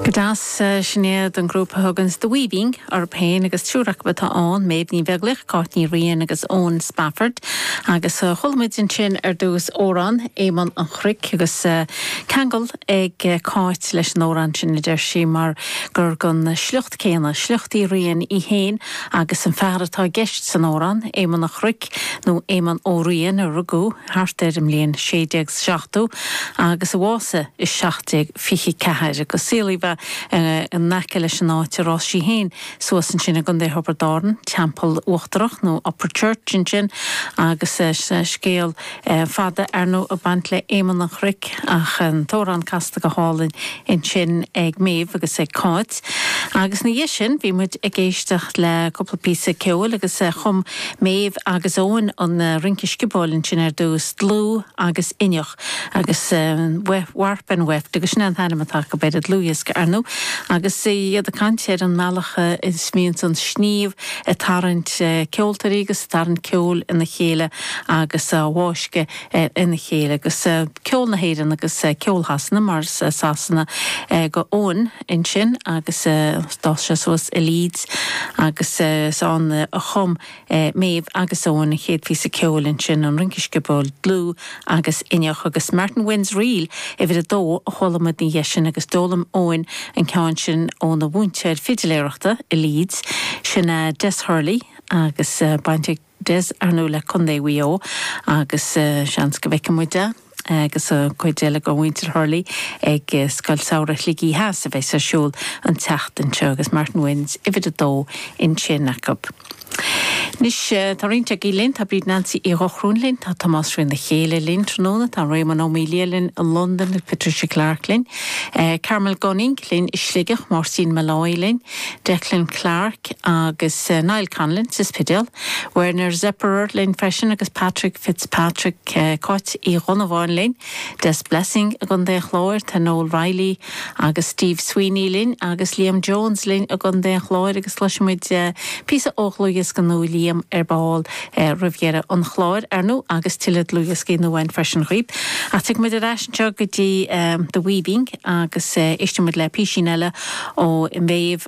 Go deas, sin iad an grúpa a thuganns, The Weaving, orthu féin agus triúr acu atá ann, Méabh Ní Bheaglaoich, Cáit Ní Riain agus Eoin Spafford. Agus chuala muid ansin ar dtús amhrán, Éamonn an Chnoic agus ceangal ag Cáit leis an amhrán sin, a deir sí, mar gur gon sliocht céanna, sliocht Uí Riain í féin agus an fear atá i gceist san amhrán, Éamonn an Chnoic, nó Éamonn Ó Riain, a rugadh thart ar an mbliain 1670 agus a bhásaigh i 24 agus saolaíodh é in aice leis an áit ar fhás sí féin suas ansin i gContae Thiobraid Árann, Teampall Uachtarach nó Upperchurch ansin agus scéal fada ar ndóigh ag baint le Éamonn an Chnoic ach an t-amhrán casta go hálainn ansin ag Méabh agus ag Cáit. Agus ina dhiaidh sin bhí muid ag éisteacht le cúpla píosa ceoil agus chum Méabh agus Eoin an rince sciobóil ansin ar dtús, Dlúth agus Inneach. Agus Warp and Weft, agus sin é an t-ainm atá acu ar an dlúthdhiosca, ar ndóigh. Agus iad ag caint ar an mbealach a mbíonn an sníomh ag tarraingt ceoltóirí agus ag tarraingt ceoil ina chéile agus á bhfáscadh ina chéile. Agus ceol na hÉireann agus ceol Shasana, mar is as Sasana go Eoin ansin agus d'fhás sé suas i Leeds agus is ann a chum Méabh agus Eoin, an chéad phíosa ceoil ansin, an rince sciobóil dlúth agus inneach, agus Martin Wynne's Reel uimhir a dó a chuala muid ina dhiaidh sin agus d'fhoghlaim Eoin an ceann sin óna mhúinteoir fidiléireachta i Leeds, sin a Des Hurley agus eh, baint ag Des, ar ndóigh, le Contae Mhaigh Eo agus eh, seans go bhfeicfidh muid Des. agus an chuid eile de mhuintir Hurley ag Scoil Samhraidh Shligigh Theas a bheas ar siúl an tseachtain seo agus Martin Wynne's uimhir a dó ansin acu. Anois, tá roinnt agaibh linn, tá Bríd Nancy Uí Dhochrúin linn, tá Tomás Rua Ó Cadhla linn tráthnóna, tá Réamonn Ó Maolaodha linn i Londain agus Patricia Clarke linn, Carmel Gunning linn i Sligeach, Máirtín Molloy linn, Declan Clarke agus Niall Conlon sa Spidéal. Werner Zepperer linn freisin agus Patrick Fitzpatrick, Cáit Uí Dhonnabháin linn, Des Blessing i gContae an Chláir, tá Noel Reilly agus Steve Sweeney linn agus Liam Jones linn i gContae an Chláir agus cloisfimid píosa ó dhlúthdhiosca nua Liam ar ball roimh dheireadh an chláir, ar ndóigh, agus tuilleadh dlúthdhioscaí nua ann freisin dhaoibh. Ach tiocfaidh muid ar ais anseo go dtí The Weaving agus éistfimid le písín eile ó Mhéabh.